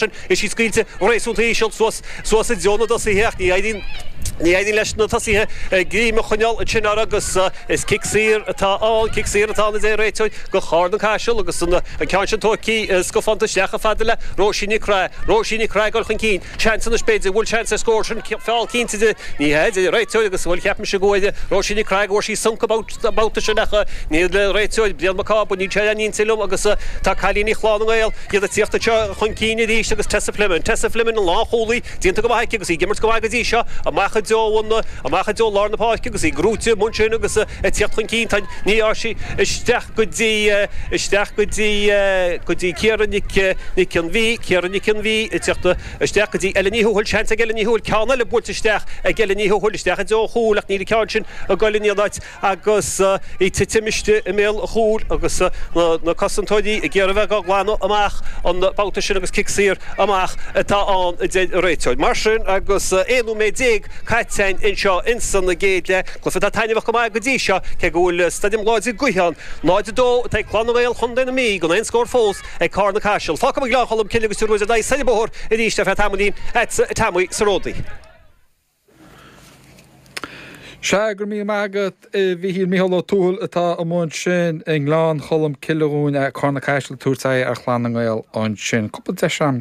sin, is í scaoilte go réasúnta íseal suas suas i dtreo na dtosaithe ach ní éiríonn ní éiríonn leis na tosaithe greim a choinneáil ansin uirthi agus is cic saor atá ann cic saor atá ann a deir an réiteoir go Carna-Caiseal agus an ceann sin tugtha scufánta isteach chomh fada le Róisín Nic Craith Róisín Nic Craith ag dul chun cinn seans anois b'fhéidir go bhfuil seans ar scór sin feall cinnte de ní hea a deir an réiteoir agus bhuel cheap mise go bhfuil Róisín Nic Craith go bhfuair sí sonc an babhta sin ach níl an réiteoir Brian Mac Cába níl sé ar aon intinn liom agus tá cailíní Chlann na nGael D'fhéadfadh teacht anseo chun cinn arís agus Tessa Fleming. Tessa Fleming, an lánchúlaí, déanta go maith aici agus í ag imirt go maith go dtí seo. Amach i dtreo an, amach i dtreo lár na páirce agus í ag rúiteadh muin sin agus ag teacht chun cinn. Tá, ní, á, sí isteach go dtí, isteach go dtí, go dtí Ciara Nic, Nic an Mhí, Ciara Nic an Mhí ag teacht isteach go dtí Ella Ní Thuathail. Seans ag Ella Ní Thuathail ceann eile buailte isteach ag Ella Ní Thuathail. Isteach i dtreo an chúil ach níl an ceann sin ag goil in aon áit. agus í ag titim istigh i mbéal an chúil agus na cosantóirí ag iarraidh a bheith á glanadh amach an babhta sin agus cic saor amach atá ann a deir an réiteoir. Mar sin agus 11 nóiméad caite anseo ins an gcéad leath, cluiche atá taitneamhach go maith go dtí seo, cé go bhfuil stoirm láidir gaoithe ann, 0, 2 atá ag Clann na nGael chontae na Mí gan aon scór fós ag Carna-Caiseal. Fágfaidh mé Gleann Cholm Cille agus Tír Eoghain ar dheighilt ar aghaidh Sailearna Bóthair arís ar feadh tamaillín, ag Tommy sa ródaí. Sea, go raibh míle maith agat a Mhichíl Mícheál Ó Tuathail atá amuigh ansin i nGleann Cholm Cille dhúinn, Carna-Caiseal, ag tabhairt aghaidh ar Chlann na nGael ansin. Cúpla deis agam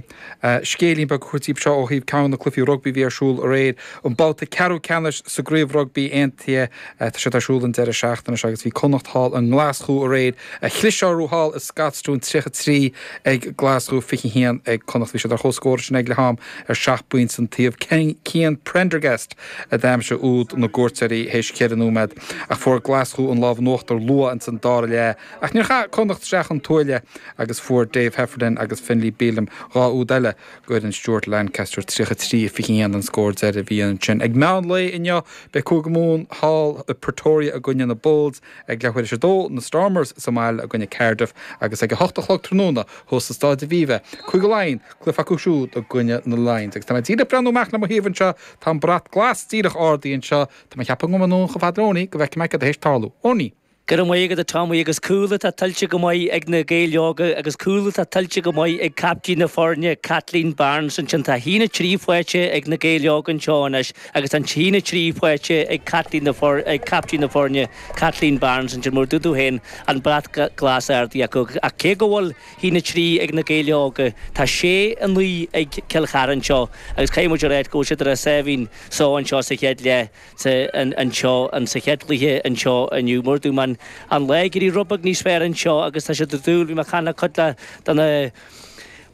scéilín beag a thabhairt daoibh seo ó thaobh ceann de na cluichí rugbaí a bhí ar siúl aréir, an babhta ceathrú ceannais sa gCraobh Rugbaí Aontaithe. Tá siad ar siúl an deireadh seachtaine seo agus bhí Connacht thall i nGlaschú aréir. Ach chlis orthu thall i Scotstoun 33 ag Glaschú 21 ag Connacht. Bhí siad ar chomhscór ansin ag leath-am ar seacht bpointe an taobh. Cian Prendergast a d'aimsigh úd na gcuairteoirí théis cheithre nóiméad ach fuair Glaschú an lámh in uachtar luath ins an dara leath ach níor chaith Connacht isteach an tuáille agus fuair Dave Heffernan agus Finlay Bealham dhá úd eile go fhoireann Stuart Lancaster. 33, 21 an scór deiridh a bhí ansin. Ag meán lae inniu beidh Cúige Mumhan thall i Pretoria i gcoinne na Bulls. Ag leath uair is a dó, na Stormers sa mbaile i gcoinne Cardiff agus ag a hocht a chlog tráthnóna, thuas sa Staid Aviva, Cúige Laighean, cluiche acu siúd i gcoinne na Lions. Agus tá mé díreach ag breathnú amach le mo thaobh anseo, tá an brat glas díreach ardaithe anseo. Tá mé ag ceapadh go ngabhfaidh mé anonn chomh fada le Oney go bhfeicfidh mé céard atá théis tarlú. Oney. Go raibh maith agat a Tommy agus cúl atá tuillte go maith ag na Gaeil Óga agus cúl atá tuillte go maith ag caiptín na foirne Kathleen Barnes. Ansin tá 1 3 faighte ag na Gaeil Óga anseo anois. Agus an t-aon 3 faighte ag caiptín na foirne, Kathleen Barnes, ansin mar a dúirt tú féin, An brat glas ardaithe acu. Ach cé go bhfuil 1 3 ag Na Gaeil Óga, tá 6 9 ag Cill Chartha anseo agus caithfidh muid a ráit go bhfuil siad ar a sáimhín só anseo sa chéad leath anseo sa chéad chluiche anseo inniu. Mar a dúirt mé an lá ag éirí rud beag níos fearr anseo agus tá siad dúil bhí mé a chana cúpla de na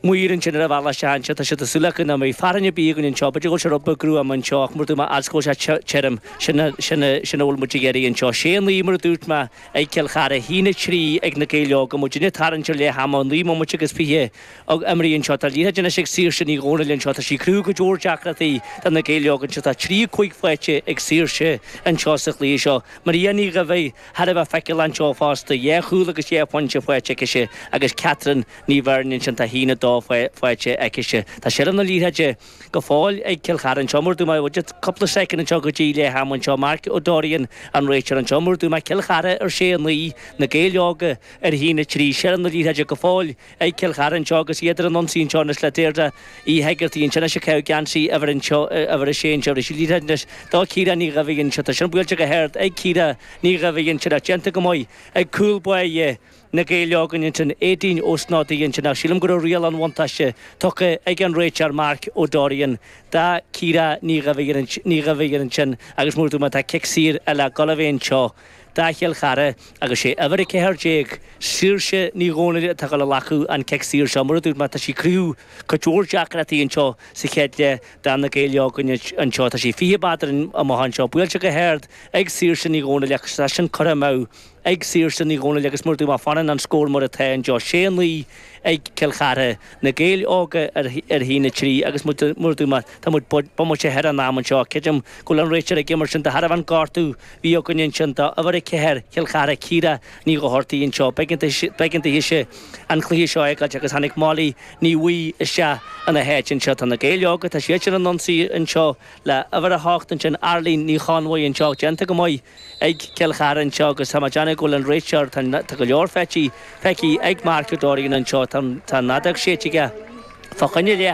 Maidir ansin ar an bhealach isteach anseo, tá siad ag súil acu nach mbeidh fearthainn ar bith againn anseo. B'fhéidir go bhfuil sé rud beag gruama anseo ach mar a dúirt mé fhad is go bhfuil sé tirim, sin a sin a bhfuil muid ag iarraidh anseo. Sé a naoi mar a dúirt mé ag Cill Chartha, a haon a trí ag na Gaeil Óga. Muidinne ag tarraingt ar leath ama, naoi mbomaite agus fiche imeartha anseo. Tá an liathróid anois ag Saoirse Ní Dhomhnaill anseo. Tá sí ag cruthú go leor deacrachtaí do na Gaeil Óga anseo. Tá a trí a cúig faighte ag Saoirse anseo sa chluiche seo. Maria Ní Dhaimhigh. Thar a bheith feiceálach anseo fosta, dhá chúl agus dhá phointe faighte aicise agus Catherine Ní Bheirn ansin, tá a haon a dó faighte aicise. Tá seilbh na liathróide go fóill ag Cill Chartha anseo, mar a dúirt mé muid, cúpla soicind anseo go dtí leath ama anseo. Mark Ó Dorrian an réiteoir anseo, mar a dúirt mé Cill Chartha ar sé, a naoi, Na Gaeil Óga ar a haon a trí, seilbh na liathróide go fóill, ag Cill Chartha anseo agus iad ar an ionsaí anseo anois le Deirdre Uí Heigeartaigh ansin atá ag caitheamh geansaí uimhir anseo uimhir a sé anseo anois Liathróid anois ag Ciara Ní Dhuibhginn anseo tá sin buailte go hard ag Ciara Ní Dhuibhginn ansin ach déanta go maith ag cúl báire Na Gaeil Óga ansin Éadaoin Ó Snodaigh ansin ach sílim go raibh riail an bhuntáiste tugtha ag an réiteoir Mark Ó Dorrian do Chiara Ní Dhuibhginn Ní Dhuibhginn ansin agus mar a dúirt mé tá cic saor eile ag gabháil a bheith anseo do Chill Chartha agus sé uimhir a ceathair déag, Saoirse Ní Dhomhnaill atá ag dul a ghlacadh an cic saor seo. Mar a dúirt mé tá sí ag cruthú go leor deacrachtaí anseo sa chéad leath do na Gaeil Óga anseo. Tá sí fiche méadar amach anseo. Buailte go hard ag Saoirse Ní Dhomhnaill ach tá sin curtha amach ag Saoirse Ní Dhomhnaill agus mar a dúirt mé fanann an scór mar atá anseo. Sé a naoi. ag Cill Chartha, Na Gaeil Óga ar a haon a trí agus mar a dúirt mé tá muid bomaite thar an am anseo. Creidim go bhfuil an réiteoir ag imirt sin de thairbhe an gortú a bhí againne ansin do uimhir a ceathair Chill Chartha Ciara Ní Dhochartaigh anseo. B'éigean dithe an cluiche seo a fhágáilt agus tháinig Molly Ní Bhaoill isteach ina háit anseo. Tá na Gaeil Óga, tá siad ar an ionsaí anseo. le uimhir a hocht ansin, Arlene Ní Chonmhaidh anseo, déanta go maith ag Cill Chartha anseo agus tá mé ag déanamh go bhfuil an réiteoir, tá tá go leor feicthe, feicthe ag Mark Ó Dorrian anseo, tá an tá an fheadóg séidte aige fá choinne leith,